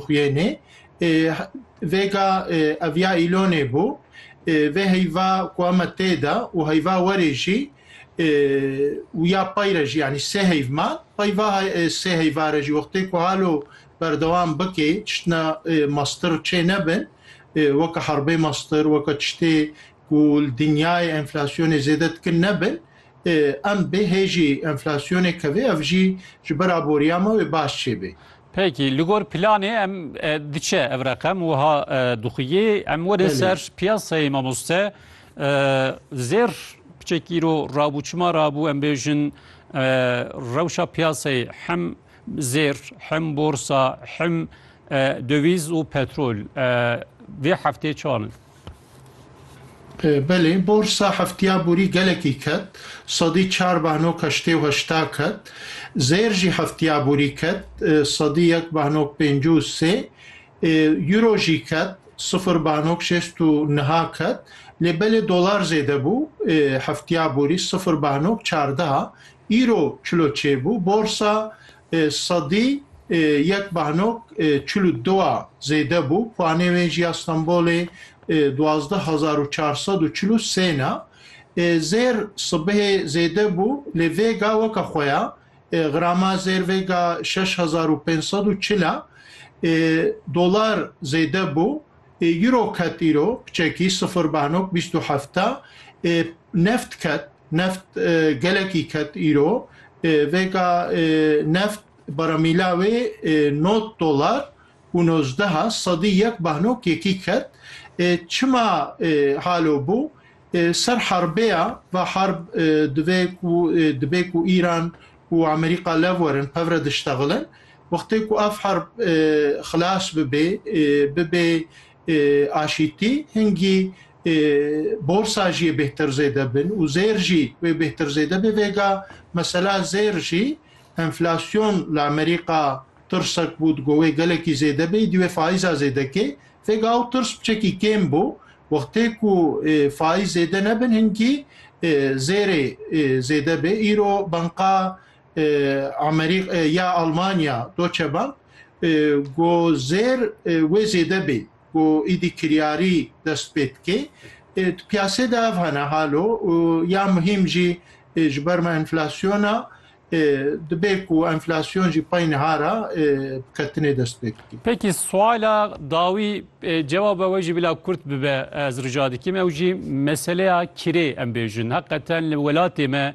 xwîyênê. Vêga ev ya îlonê bû. Vê heyva ku eme tê de û heyva werê jî û ya pey re jî yanî sê heyv man. Peyva sê heyva re jî wextê ku halo berdewam bikê tiştine mastir çê nebin weke herbê mastir weke tiştê ku li dinyayê enflasyonê zêde dikin nebin. Em bê hêjî enflasyonê kevê ev jî ji ber aboriya me wê baş çêbê. Peki li gor planê em diçe ev reqem wiha dixuyê, em werin ser piyasayê mamoste zêr piçek îro rabû çima rabû em bêjin rewşa piyasayê hem zêr hem borsa hem döviz û petrol vê heftê çanin? Belê, borsa heftiya borî gelekî ket, sedî çar behnok heştê û heşta ket. Zêr jî heftiya borî ket, sedî yek behnok pêncî û sê. Euro jî ket, sifir behnok şêst û niha ket. Lê belê dolar zêde bû, heftiya borî sifir behnok çardeha. Euro çil û çê bû. Borsa Sadî yek behnok çil û du a zêde bû, puanê wê ji ya Stenbolê duwazdeh hezar û çar sed û çil û sê ne. Zêr sibihê zêde bû lê Vêga weke xwe ya, grama Zêr Vêga şeş hezar û pênc sed û çil e. Dolar zêde bû, Euro ket îro, piçekî sifir behnok bîst û heft e. Neft ket, Neft gelekî ket îro. Vêga neft baramîla wê nod dolar û nozdeha sedî yek bahnok yekî ket. Çima halo bû? Ser herbê ya, va herb divê ku dibê ku Îran û Amerîka lev werin, pevre diştexilin. Wextê ku ev herb xilas bibê, bibê aşîtî hingî borsa jî bêhtir zêde bin û zêr jî wê bêhtir zêde bê vêga mesela zêr jî enflasyon li Amerîka tirsek bû digo wê gelekî zêde bê dî wê faiza zêdekê vêga ew tirs biçekî kêm bû wextê ku faiz zêde nebin hingî zêrê zêde bê îro banka Amerîk ya Almanya Deutsche Bank go zêr wê zêde bê go îdî kiryarî dest pê dikê di piyasê de ev hene halo ya muhîm jî ji ber me enflasyona dibê ku enflasyon jî pey niha ra ketinê dest pê dikê. Pekî suala dawî cevaba we jî bila kurt bibe ez rica dikim ew jî meseleya kirê em bêjin heqeten li welatê me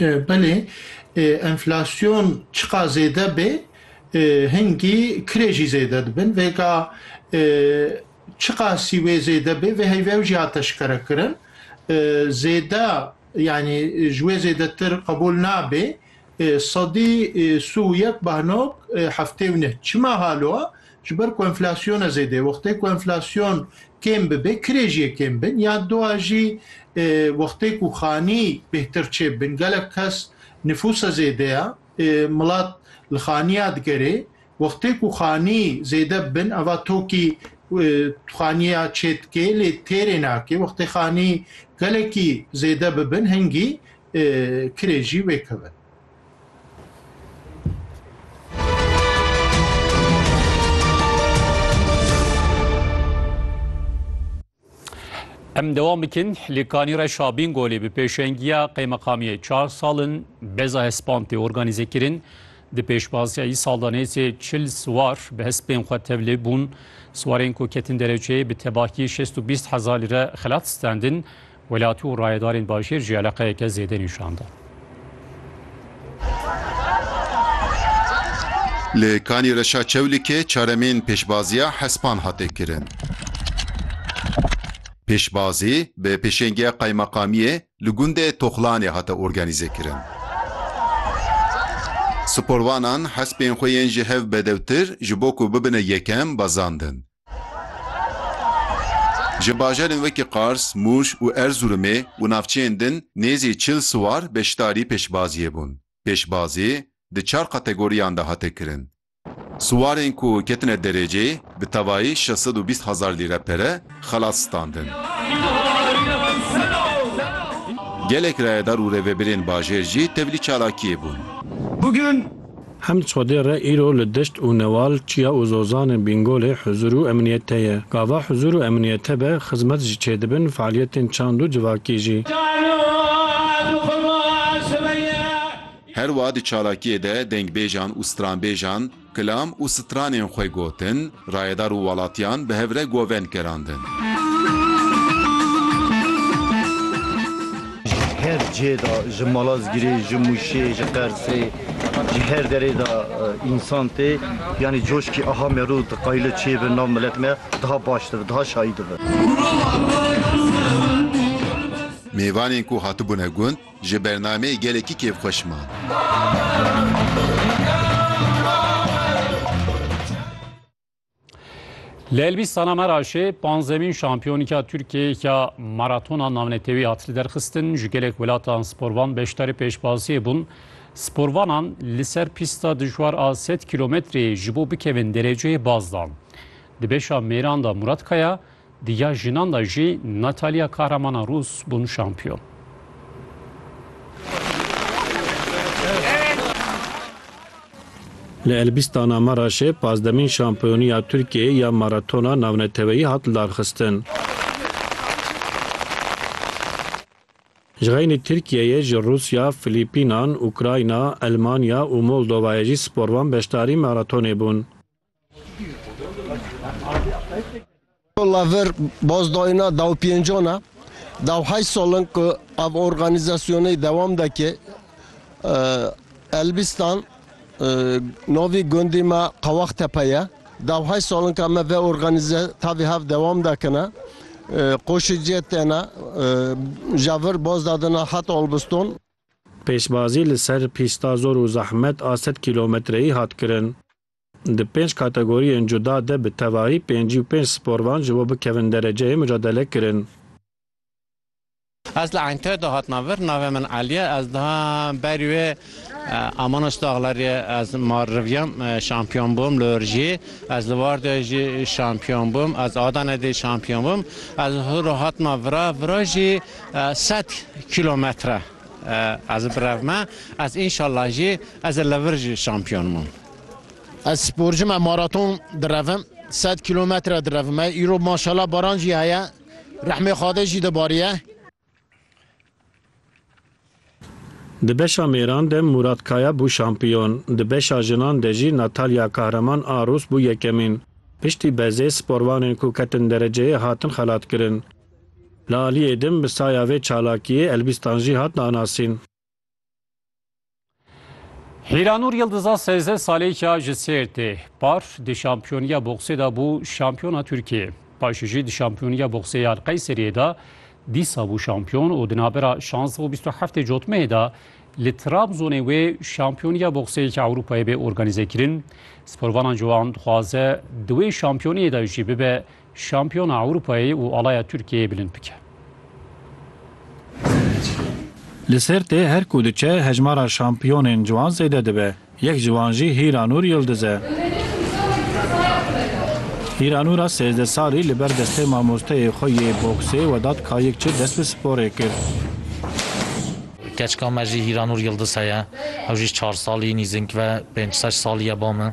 Belê, enflasyon çiqas zêde bê, hingî kirê jî zêde dibin. Vêga çiqasî wê zêde bê, vê heyvê ew jî hate şikerekirin. Zêde yanî ji wê zêdetir qebûl nabê. Sedî sû û yek behnok heftê û neh. Çima halo e? Ji ber ku enflasyona zêde wextê ku enflasyon kêm bibe kirê jî yê kêm bin ya dua jî wextê ku xanî bêhtir çêbibin gelek kes nifûsa zêde ya milat li xaniya digerê wextê ku xanî zêde bibin eva tokî xaniya çê dikê lê têrê nake wextê xanî gelekî zêde bibin hingî kirê jî wê keve. Em devam bikin li kanî re şabîn golê bi pêşengiya qeymeqamiyê çar salin beza hespan tê organîze kirin di pêşbaziya î saldanêzê çil siwar bi hespên xwe tevlê bûn siwarên ku ketin dereçeyê bi tebahî 620 hezar lîre xelat stendin Welatî û rayedarên bajêr jî eleqeyeke zêde nîşan dan. Li Kanî Reşa Çewlîkê çaremîn pêşbaziya hespan hate kirin. Pêşbazî bi pêşengiya Qaymeqamiyê li gundê Toxlanê hate organîzekirin. Sporvanan hespên xwe yên ji hev bedewtir ji bo ku bibine yekem bezandin. Ji bajarên wekî Qars, Mûş û Erzurumê û navçeyên din nêzî çil siwar beşdarî pêşbaziyê bûn. Pêşbazî di çar kategoriyan de hate kirin. Siwarên ku ketine dereceyê bi tevayî şeş sed û bîst hezar lîre pere xelat standin. Gelek rayedar û rêvebirên bajêr jî tevlî çalakiyê bûn. Hemd Xwedê re îro li Dişt û Newal, Çiya û Zozanê Bîngolê huzur û emniyet heye. Gava huzur û emniyet hebe, xizmet jî çêdibin, fealiyetên çand û civakî jî. Her wa di çalakiyê de dengbêjan û stranbêjan, kilam û stranên xwe gotin, Rayedar û welatiyan bi hev re govên kerandin. Ji her cihê de ji Malazgirê, ji Mûşê, ji Qersê, ji her derê de însan tê. Yanî coşkî aha merû di qayile çê bi nav milet me daha baş dibi, daha şayî dibi. Mêvanên ku hatibûne gund, Ji bernameyê gelekî kêfxweş man. Li Elbîstana Meraşê panzdemîn şampiyonîka Tirkiyeyê ya maratona navnetewî hat liderxistin. Ji gelek welatan sporvan beşdarî pêşbaziyê bûn. Sporvanan li ser pîsta dijwar a sed kîlometreyê ji bo bikevin dereceyê baz dan. Di beşa mêran de Murat Kaya, Di ya jinan de jî Natalya kahramana rûs bûn şampiyon. Li Elbîstana Meraşê pazdemîn şampiyoniya Tirkiyeyê ya maratona navneteweyî hat lidarxistin. Ji xeynî Tirkiyeyê ji Rûsya, Filîpînan, Ukrayna, Elmanya û Moldovayê jî sporvan beşdarî maratonê bûn. Walla vir bazdayîna dawpêncan e. Daw heşt sal in ku ev organîzasyonê dewam dike. Elbîstan navê gundê me Qewextepe ye. Daw heşt sal in ka me vê organîze tavê hev dewam dikine. Qoşê cê têne ja vir baz dadine heta Olbiston. Pêşbazî li ser pîsta zor û zehmet a sed kîlometreyî hat kirin. Di pênc kategoriyên cuda de bi tevahî pêncî û pênc sporvan ji bo bikevin dereceyê mucadele kirin. Ez li Enktoyê de hatina vir, navê min Elî ye, ez diha berî wê Amanoç Daglariyê ez mar riviyam, şampiyon bûm li Urjiyê, ez li Wardeyê jî şampiyon bûm, ez Adanê dî şampiyon bûm, ez hûro hatima vira, vira jî sed kîlometre. Ez bi rev me, ez înşallah jî ez ê li vir jî şampiyon bim. Ez sporcu me, maraton direvim, sed kîlometre direvim. Me îro maşallah baran jî heye, rehmê Xwedê jî dibariye. Di beşa mêran de Mûrat Kaya bû şampiyon, di beşa jinan de jî Natalya Kahraman a Rûs bû yekemîn. Piştî bezê sporvanên ku ketin dereceyê hatin xelatkirin. Li aliyê din bi saya vê çalakiyê Elbîstan jî hat nanasîn. Hîranûr Yildiza sêzdeh salêka ji Sêrtê par di şampiyoniya boksê de bû şampiyona Tirkiyeyê. Paşê jî di şampiyoniya boksê ya li Qeyseriyê de dîsa bû şampiyon û di navbera şansdeh û bîst û heftê cotmeyê de li Trabzonê wê şampiyoniya bokseyeke Ewropayê bê organîzekirin. Sporvanan ji wan dixwaze di wê şampiyoniyê de jî bibe Şampiyona Ewropayê û alaya Tirkiyeyê bilind bike. Li Sêrtê her ku diçe hejmara şampiyonên ciwan zêde dibe. Yek ji wan jî Hîranûr Yildiz e. Hîranûra sêzdeh salî li ber destê mamosteyê xwe yê boksê we dat kayik çi dest bi sporê kir. Keçika me jî Hîranûr Yildiz heye. Ew jî çar salî nîzing ve pênc şeş salî ye ba min.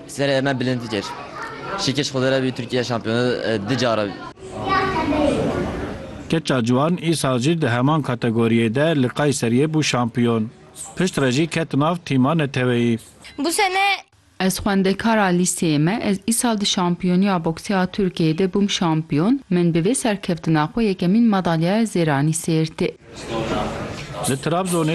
Serê me bilind kir. Şikiş xwedê re bî Tirkiye şampiyone di care bî. Keça Ciwan îsal jî di heman kategoriyê de li Kayseriyê bû şampiyon. Pişt re jî ket nav tîma neteweyî. Bu sene. Ez xwendekar a lîseyê me, ez îsal di şampiyoniya boksê a Tirkiyeyê de bûm şampiyon, min bi vê serkeftina xwe yekemîn madalyaya zêranî sêrtê. Li Trabzonê.